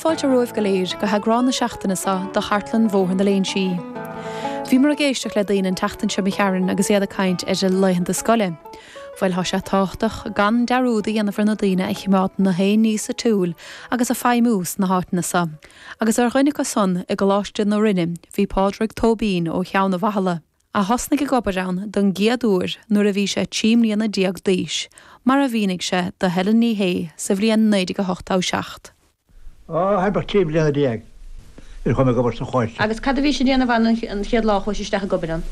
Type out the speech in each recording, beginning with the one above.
Fáilte romhaibh go léir, go heagrán na seachtaine seo do Chartlann Bhóthar na Léinsí. Bhíomar ag éisteacht le daoine an tseachtain seo imigh tharainn agus iad ag caint ar a laethanta scoile. Bhuel, thá sé tábhachtach gan dearúd a dhéanamh ar na daoine a chimeádann gach aon ní sa tsiúl agus ag feidhmiú sna háiteanna seo. Agus ar dhuine acu san i gColáiste na Rinne bhí Pádraig Tóibín ó Cheann a' Bhathala, a thosnaigh ag obair ann don gcéad uair nuair a bhí sé trí mbliana déag d'aois, mar a mhínigh sé do Helen Ní Shé sa bhliain 1987. Ó, thart ar trí bliana déag a chuaigh mé ag obair sa Choláiste. Agus cad a bhís a dhéanamh ann an chéad lá a chuais isteach ag obair ann?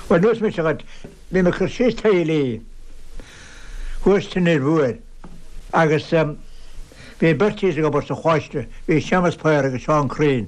Bhuel, neosfaidh mise dhuit, bhí mé ag cur síos taillí thuas san Fhir Mhór agus bhí beirt thíos ag obair sa Choláiste, bhí Séamas Paor agus Seán Crean.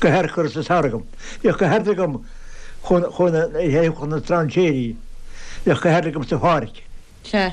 go haerchur is a thairgeadh. Bhíodh go hard agam chun a théamh chun na strainséirí. Bhíodh go hard agamsa a pháirc. Sea,